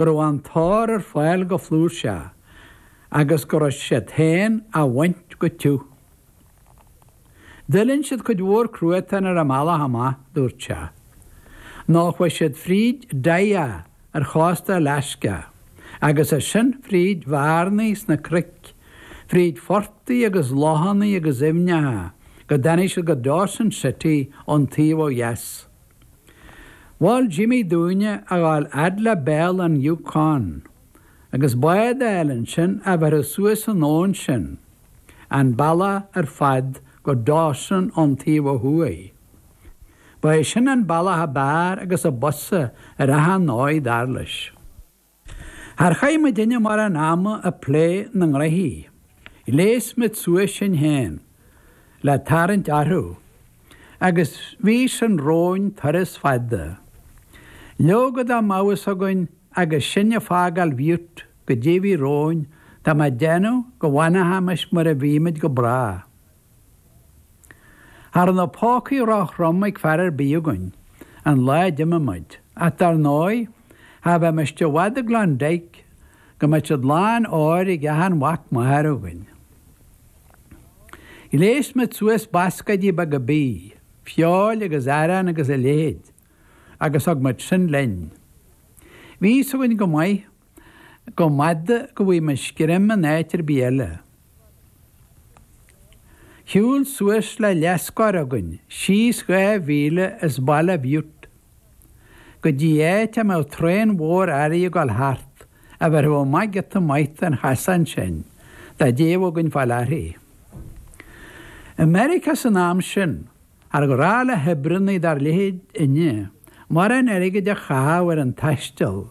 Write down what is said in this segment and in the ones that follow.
go raibh an t-ór ar fáil go flúirseach agus go raibh siad féin á bhaint go tiubh. D'fhuiling siad cuid mhór cruatain ar an mbealach amach, dúirt sé. Nó chuaigh siad fríd Dyea ar chósta Alasca agus as sin fríd bhearnaí sna cnoic, fríd phortaigh agus lochanna agus aibhneacha go dtáinig siad go Dawson City ón taobh ó dheas. Mhol Jimmy dúinne a ghabháil fhad le béal an Yukon agus bád a fháil ansin a bhéarfadh suas an abhainn sinn an bealach ar fad go Dawson ón taobh ó thuaidh. Ba é sin an bealach ab fhearr agus ab fhusa ar achan dóigh, dar leis. Char chaith muidinne mórán ama ag plé na ngnoithe. Ghléas muid suas sinn féin le tarraingt orthu agus bhí sin romhainn turas fada. Leoga dá mbeadh fhios againn agus sinn ag fágáil Bhutte goidé a bhí romhainn tá mé ag déanamh go bhfanfaimis mar a bhí muid go bráth. Cha raibh na pócaí róthrom ag fear ar bith againn an lá a d'imigh muid, ach dar ndóigh cha bheimis i bhfad i gClondyke go mbeadh siad lán óir ag achan mhac máthar againn. Ghléas muid suas bascáidí beaga bídh, feoil agus arán agus a leithéid agus thug muid sin linn. Bhí fhios againn go maith Go mb'fhada go bhfaighimis greim in áit ar bith eile. Shiúil suas le leathscór againn síos dhá mhíle as Baile Bhutte go dtí áit a mbeadh traein mhór earraí ag gabháil thart, a bhéarfadh amach giota maith den chasán sinn dá dtéadh againn fáil uirthi. I Meiriceá san am sin, char ghnách le hoibríonnaí dár leithéidinne mórán airgid a chaitheamh ar an taisteal,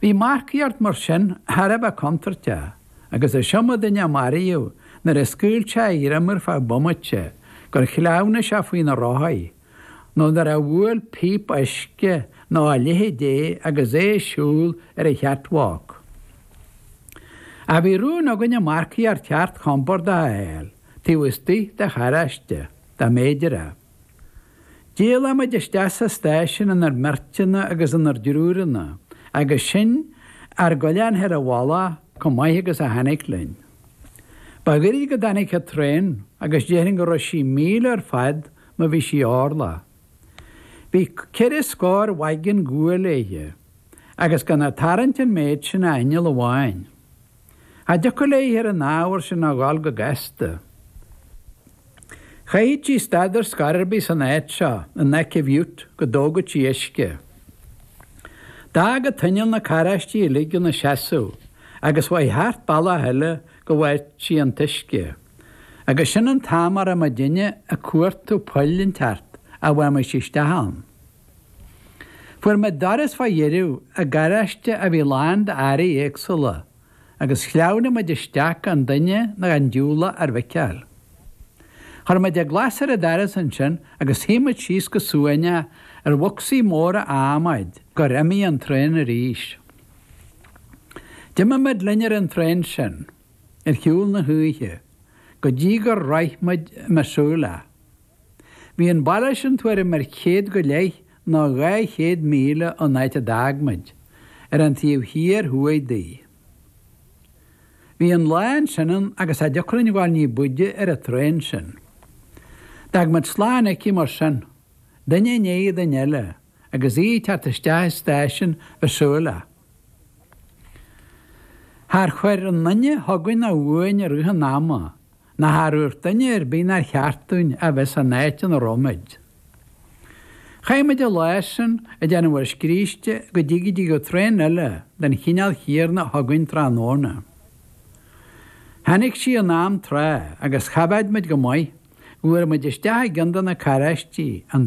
Bhí marcaíocht mar sin thar a bheith contúirteach agus is iomdha duine a maraíodh nuair a scaoil sé a ghreim ar feadh bomaite gur shleamhnaigh sé faoi na rothaí nó nuair a bhuail píopa uisce nó a leithid é agus é ag siúl ar an chatwalk. Ach bhí rún againne marcaíocht cheart chompordach a fháil taobh istigh de charráiste, dá mb'fhéidir é. D'éalaigh muid isteach sa stáisiún inár mbeirteanna agus inár dtriúranna agus sinn ár gcoinneáil féin i bhfolach chomh maith agus a tháinig linn. Ba ghairid go dtáinig an traein agus déarfainn go raibh sí míle ar fad má bhí sí orlach. Bhí ceithre scór wagon guail léithe agus gan ag tarraingt an méid sin ach inneall amháin. cha dtiocfadh léithe ar an ábhar sin a ghabháil go gasta. Chaithfeadh sí stad ar scor ar bith san áit seo in aice Bhutte go dtógadh sí uisce. D'fhág an t-inneall na carráistí uilig ina seasamh agus chuaigh thart bealach eile go bhfaigheadh sí an t-uisce. Agus sin an t-am a raibh mo dhuine ag cuartú poll inteacht a bhfaighimis isteach ann. Fuair muid doras fá dheireadh i gcarráiste a bhí lán d'earraí éagsúla agus shleamhnaigh muid isteach gan duine ná gan diúlach ár bhfeiceáil. Chuir muid an glas ar an doras ansin agus shuigh muid síos go suaimhneach ar bhocsaí móra adhmaid gur imigh an traein arís. D'imigh muid linn ar an traein sin ar shiúl na hoíche go dtí gur shroich muid Missoula. Bhí an baile sin tuairim ar chéad go leith nó dhá chéad míle ón áit a d'fhág muid, ar an taobh thiar thuaidh di. Bhí an lá ansin ann agus cha dtiocfadh linn gabháil ní b'fhaide ar an traein sin. D'fhág muid slán aici mar sin, duine i ndiaidh duine eile, agus í ag teacht isteach i stáisiún Mhissoula. Char chuir aon duine chugainn ná uainn i rith an ama, ná char dhúirt duine ar bith nár cheart dúinn a bheith san áit ina raibh muid. Chaith muid an lá sin ag déanamh ár scríste go dtí go dtigeadh traein eile den chineál chéarna chugainn tráthnóna. Tháinig sí in am tráth agus choimhéad muid go maith go bhfuair muid isteach i gceann de na carráistí, an